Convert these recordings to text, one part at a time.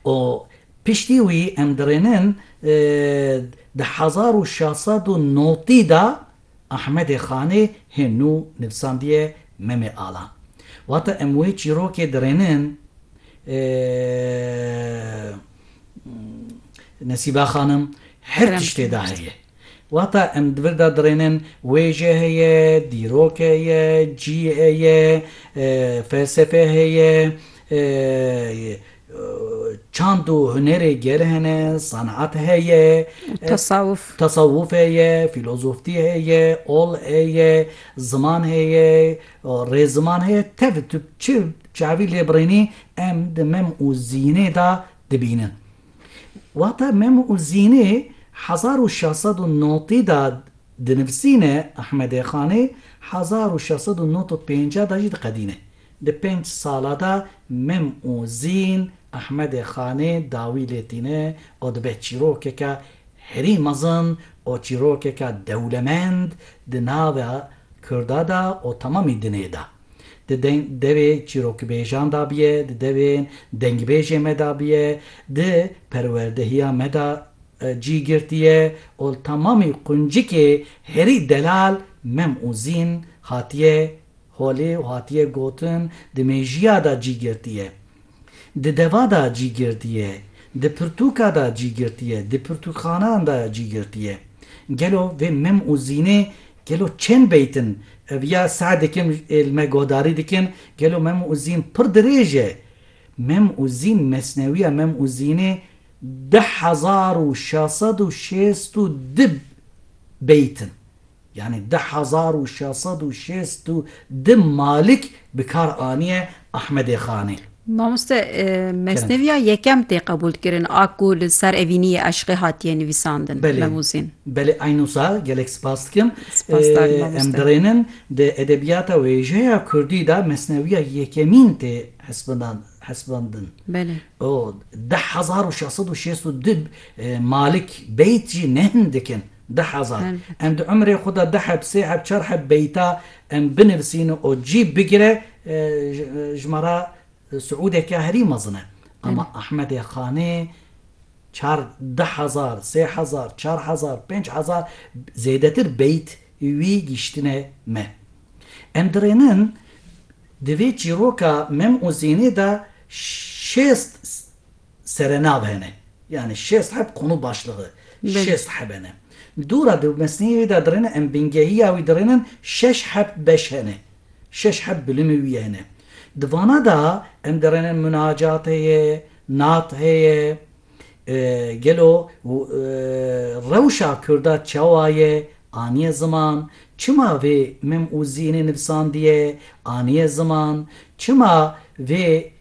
û piştî wî em dirênin di hezar û şeş sed û notî de Ahmedê Xanê hê nû nivîsandiye Memê Alan. Wate em wê çîrokê dirênin Nesîbe Xanim her tiştê de heye. Wata em di vir de dirênin, wêje heye, dîrok heye, cî heye, felsefe heye, çand û hunerê gerê hene, senat heye, tesawuf heye, fîlozoftî heye, ol heye, ziman heye, rêziman heye, tevî tu çi çavî lê birênî em di mem û zînê de dibînin. Wata mem û zînê hezar û şeş sed û notî de dinivîsîne, Ahmedê Xanê hezar û şeş sed û nod û pêncî de jî diqedîne. Di pênc sala de mem û zîn Ahmedê Xanê dawî lê tîne û dibe çîrokeke herî mezin û çîrokeke dewlemend di nava Kurda de û temamî dinê de. Di deng devê çîrokibêjan da biye, di devên dengbêjê me da biye, di perwerdehiya me da cî girtiye û li temamî quncikê herî delal mem û zîn hatiye holê û hatiye gotin di mêjiya da cî girtiye. Di deva de cî girtiye, di pirtûka de cî girtiye, di pirtûkxanan de cî girtiye. Gelo vê mim û zînê gelo çend beyt in? Ev ya seh dikim li me guhdarî dikin, gelo mim û zîn pir dirêj e? Mim û zîn, mesnewiya mim û zînê du hezar û şeş sed û şêst û du beyt in. Yanî di hezar û şeş sed û şêst û du Malik bi kar aniye Ahmedê Xanê. Mamoste mesneviya yekem tê qebûl kirin a ku li ser evîniyê eşqê hatiye nivîsandin Memûzîn. Belê eyno sa gelek spas dikim. Em dirênin di edebiyata wêjeya kurdî de mesneviya yekemîn tê hesibandin. Di hezar û şeş sed û şêst û du Malik beyt jî ne hindik in. Deh hezar. Em di umrê xwe de deheb, sêheb, çarheb beyta em binivisîn û cî bigire ji me re siûdeke herî mezin e. Ama Ahmedê Xanê çar deh hezar, sê hezar, çar hezar, pênc hezar zêdetir beyt wî gihîştine me. Em dirênin di vê çîroka Mem û Zînê de şêst. serenav hene. Yanî şêst heb qûn û başligi. Şêst heb hene. Dû ra di mesneyê wî de dirêne em bingehîya wî dirênin şeş heb beş hene. Şeş heb bilimê wî hene. Di vana de em dirênin munacat heye, nat heye. Gelo rewşa Kurda çawa ye? Aniye ziman. Çima vê mim û zînê nivîsandiye? Aniye ziman. Çima vê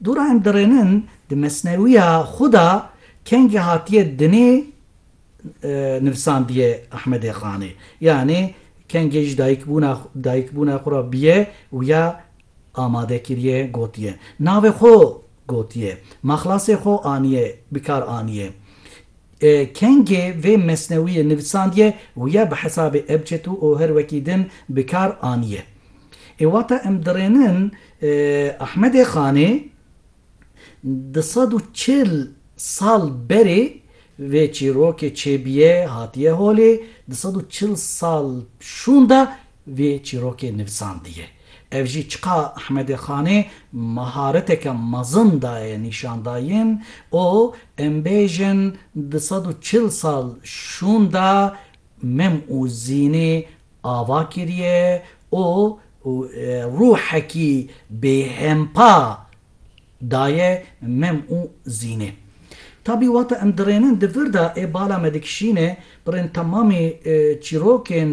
Dora em dirênin di mesnewiya xwe de kengê hatiye dinê nivisandiye Ahmedê Xanê. Yanê kengê ji dayikbûna xwe re bûye û ya amade kiriye gotiye. Navê xwe gotiye. Maxlasê xwe aniye bikar aniye. Kengê vê mesnewiyê nivisandiye û ya bi hesabê ebced û oher wekî din bikar aniye. Ê wata em dirênin Ahmedê Xanê du sed û çil sal berê vê çîrokê çêbîye hatîye holê, du sed û çil sal şûnde vê çîrokê nivisandîye. Ev jî çiqa Ahmedê Xanê mahareteke mezin daye nîşandayîn û em bêjin du sed û çil sal şûnde Mem û Zînê ava kiriye û rûhekî bêhempa daye Mem û Zînê. Tabî wata em dirênin di vir de ê bala me dikişîne, birên temamî çîrokên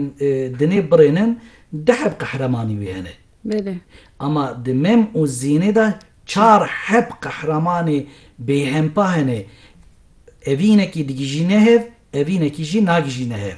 dinê birênin, deh ev qehremanî wî hene. Belê. Ama di mem û zînê de çar heb qehremanê bêhempa hene. Evînekî digijîne hev, evînekî jî nagijîne hev.